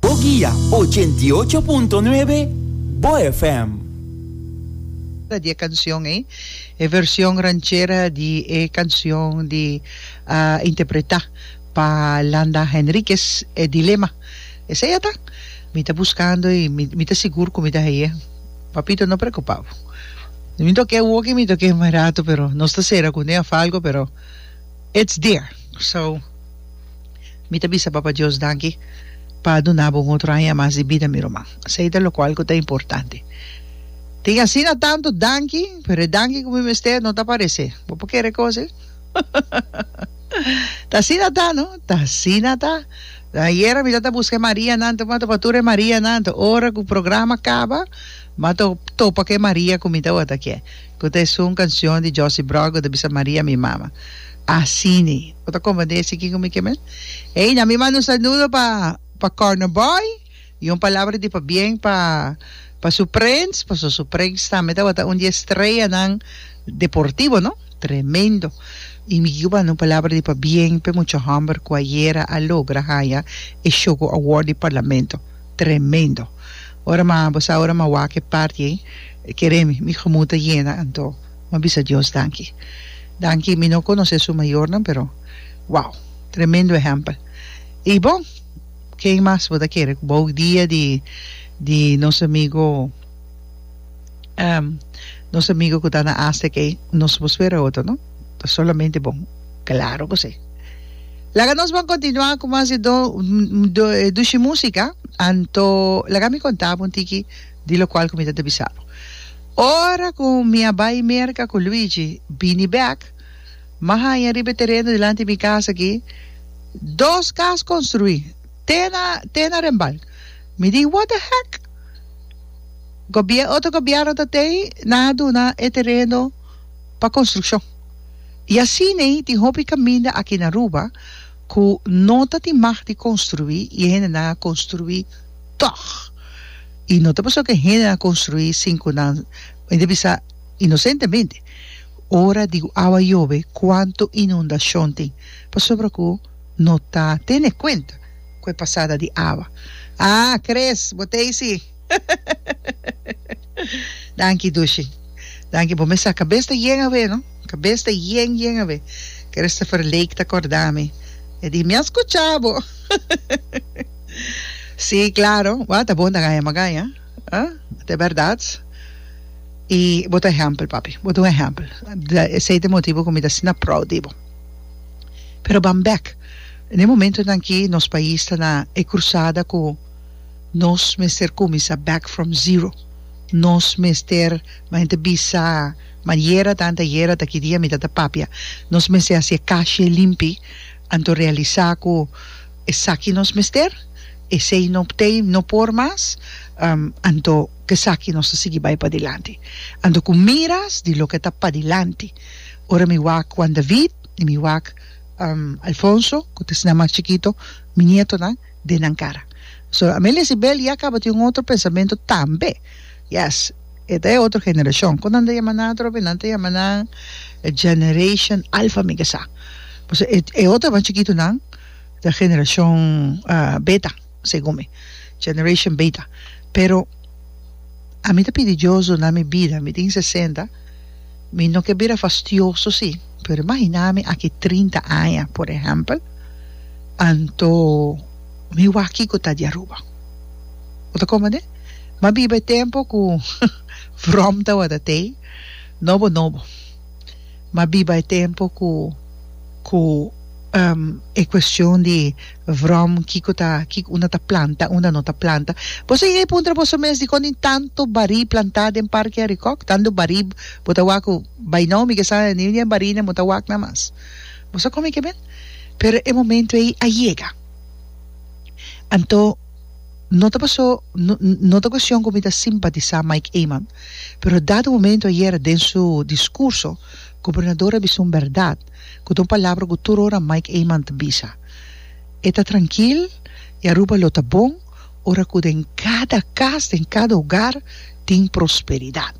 Bo guia ochenta i ocho punto nuebe Bo FM. Di e cancion ey, e version ranchera di e cancion di interpreta pa Landa Henriquez e Dilema. Esey a ta. Mi ta buscando y mi ta sigur cu mi ta haye. Papito no preocupa bo. Mi ta oke woke y mi ta oke mai rato pero nos ta cera cu un día falco pero it's there. So. Mi ta bisa Papa Dios danki pa duna bo un otro aña mas di bida, mi ruman. Esei ta locual cu ta importante. Tin asina tanto danki, pero e danki cu mi mester no ta parece. Bo por kere cosi? Ta asina ta, no? Ta asina ta. Ayer a mitad ta busca e Marianan, ta topa tur e Marianan, ta ora cu programa caba, mi a topa cu e Maria cu mi tabata kier. Cu ta esun cancion di Josy Brock cu ta bisa Maria mi mama. Asini. Bo ta confundé esaki cu mi kemel? Ey, na mi manda un saludo pa, pa Corner Boy y un palabra di pabien pa, pa su prens, paso su prens tambe tabata un di e streanan deportivo, no? Tremendo. Y mi quier banda un palabra di pabien p'e mucha homber cu ayera a logra haya e Shogo Award di Parlamento. tremendo. Ora ma bo sa ora ma wak e parti ei kere mi mi gemoed ta yena anto ma bisa Dios danki. Danki mi no conoce su mayornan pero wow tremendo ehempel. Y bon ken mas bo ta kere cu bo dia di di nos amigo. Ehm nos amigo ku ta na Aztec ei no supo spera otro no ta solamente bon claro ku si laga nos bon kontinua ku mas di dushi musika anto laga mi konta bo un tiki di lokual ku mi ta bisa bo ora ku mi a bai Merka ku Luigi bini bek mi a haña riba e tereno dilanti di mi kas aki dos kas konstruí. Te na te na rembal. Mi di what the heck? Gobier otro gobierno ta tei nan a duna e tereno pa construccion. Y asine tin hopi caminda aki na Aruba cu no ta tin mag di construi y e hendenan a construi tog. Y no ta pasobra cu e hendenan a construi sin cu nan mi ta bisa inocentemente ora di awa yobe cuanto inundacion tin pasobra cu no ta tene cuenta cu e pasada di awa. Ah Chris, bo ta eysi? Danki Dushi. Danki, bo mester cabes ta yen awe no, cabes ta yen yen awe. Christopher Lake ta corda mi, e di mi a scucha bo. Si, claro, bo a ta bon ta gaya ma gaya, ah, ta e berdad. Y bo ta ehempel, papi, bo ta un ehempel. Esey ta e motibo cu mi ta asina proud di bo. Pero ban bek, na e momentonan aki nos pais ta na e crusada cu nos mester cuminsa back from zero. Nos mester, como ente bisa maniera tanta yera ta ki dia mi ta ta papia, nos mester haci e cashi limpi anto realisa cu esaki nos mester, esey no obtey, no por mas, anto cu esaki nos ta sigui bay padilanti. Anto cu miras di loke ta padilanti. Ora mi wak Juan David i mi wak Alfonso, ku ta esnan mas chikito, mi nietonan, den nan kara. So, Amelia Sibel ya kaba tin un otro pensamentu tambe. Yes, e ta e otro generashon. Kon nan ta yama nan atrobe? Nan ta yama nan Generation Alfa, mi ke sa. Pasobra e otro mas chikitonan ta Generashon Beta. segun mi, generation beta. Pero ami ta pidi Diosu na mi bida, mi tin sesenta, mi no ke bira fastioso si, pero imaginá mi aki trinta aña, por ehèmpel, anto mi wak kiko ta di Aruba. Bo ta komprendé? M'a biba e tempu ku vròm tabata t'ei, nobo nobo. M'a biba e tempu ku ku e kuestion di Vrom, Kiko ta, kiko unda ta planta, unda no ta planta? Boso a yega puntra boso mes dikon tin tantu barí plantá den Parke Arikòk? Tantu barí bo ta wak ku bai nau mi ke sa niu di e barinan bo ta wak nan mas. Bo sa kome ke bel? Pero e momentu ei a yega. Anto no ta paso, no, no ta kuestion ku mi ta simpatisá Mike Eman, pero dado momento ayera den su diskurso, Gobernador a bisa un bèrdat, ku ta un palabra ku tur ora Mike Eman ta bisa. E ta trankil i Aruba lo ta bon ora ku den kada kas, den kada hogar tin prosperidat.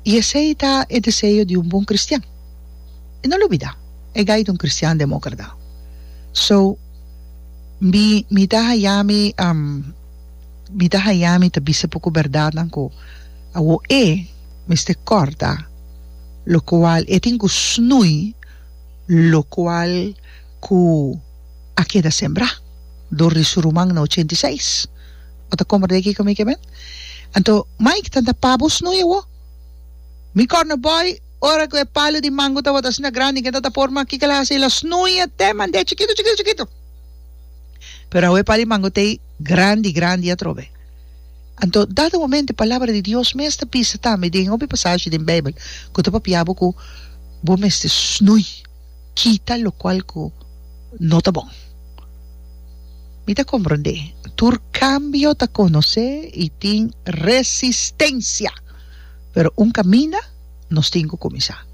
I esei ta e deseo di un bon kristian. I no lo bida, e gai ta un kristian demókrata. So, mi mi ta haya mi mi ta haya mi ta bisa poko bèrdatnan ku awo e. mester kòrda, lokual e tin ku snui lokual ku a keda sembrá dor di su ruman na ochenta i seis. Bo ta komprendé kiko mi ke men? Anto, Mike, tanta pa bo snui awó? Mi kòrda bòi ora ku e palu di mango tabata asina grandi ke tata por, ma kiko el a hasi? El a snui e te mand'é chikitu, chikitu, chikitu. Pero awe e palu di mango t'ei grandi, grandi atrobe. Anto, dat e momento e Palabra di Dios mes ta bisa tambe den hopi pasashi den Bijbel cu ta papia bo cu bo mester snui, kita, locual cu no ta bon. Mi ta comprende tur cambio ta conoce y tin resistencia, pero un caminda nos tin cu cuminsa.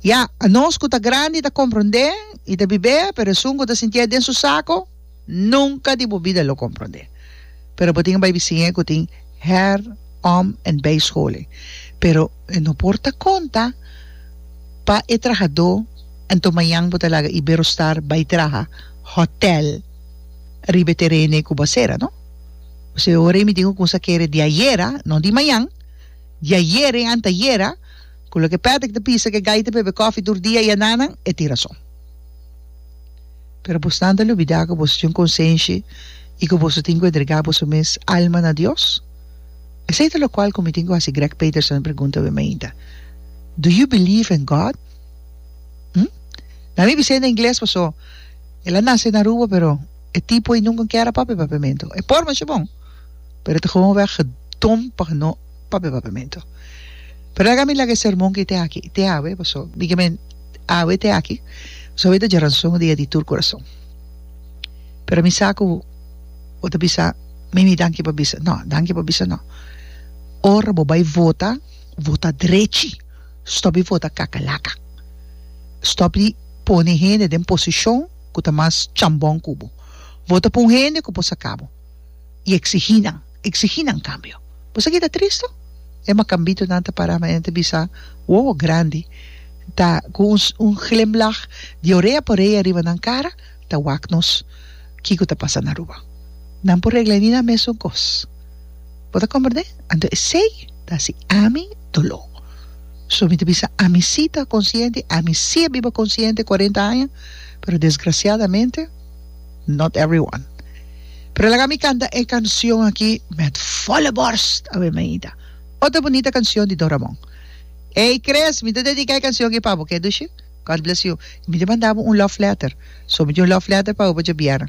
Ya, anos cu ta grandi ta comprende y ta bibe, pero esun cu ta sinti'e den su saco, Nunka di bo bida lo komprondé. Pero bo tin bai bisiña ku tin her-, om en bijscholing. Pero e no por ta konta pa e trahadó, anto mañan bo ta laga Iberostar bai traha hòtèl riba e terene ku bo a sera, no? Bo sibi awor ei mi tin ku kumsa kere di ayera, no di mañan, di ayera i antayera, ku loke Patrick ta pisa ku e gaita p'e bebe kòfi tur dia i ananan, e tin rason. Pero bosnan ta lubidá ku boso tin un konsenshi i ku boso tin ku entregá boso mes alma na Dios? Esei ta lokual ku mi tin ku hasi Greg Peterson e pregunta wen mainta, Do you believe in God? Hm? Na mi bis'ei na ingles paso el a nase na Aruba pero e tipo ei nunka kier a papia papiamentu. E por mesha bon pero ta gewoon wèg gedom pa no papia papiamento. Pero ora mi laga e sermon ki te aki, te awe, paso mi kiba men awe te aki, paso awe ta djaranson dia di tur kurason. Pero mi sa ku bo ta bisa mimi danki pa bisa, no, danki pa bisa no. Ora bo bai vota, vota drechi, stop di vota kakalaka, stop di pone hende den posishon ku ta mas chambon ku bo. Vota pa un hende ku por saka bo i eksigí nan. Exigí nan cambio. Boso a keda tristo? E macambito nan ta pará ma e ta bisa, Wowo grandi! Ta cu un un glimlach di orea pa orea riba nan cara ta wak nos kico ta pasa na Aruba. Nan por regla ini nan mesun cos. Bo ta comprendé? Anto esey ta haci ami doló. So mi ta bisa, ami sí ta consciente, ami sí a biba consciente cuarenta aña, pero desgraciadamente, not everyone. Pero laga mi canta e cancion aki met volle borst, a wen Maida. Otro bunita cancion di Don Ramon. Ey Chris, mi ta dedica e cancion aki pa bo, oke Dushi? God bless you. Mi ta manda bo un love letter. So mi tin un love letter pa bo pa djabiera.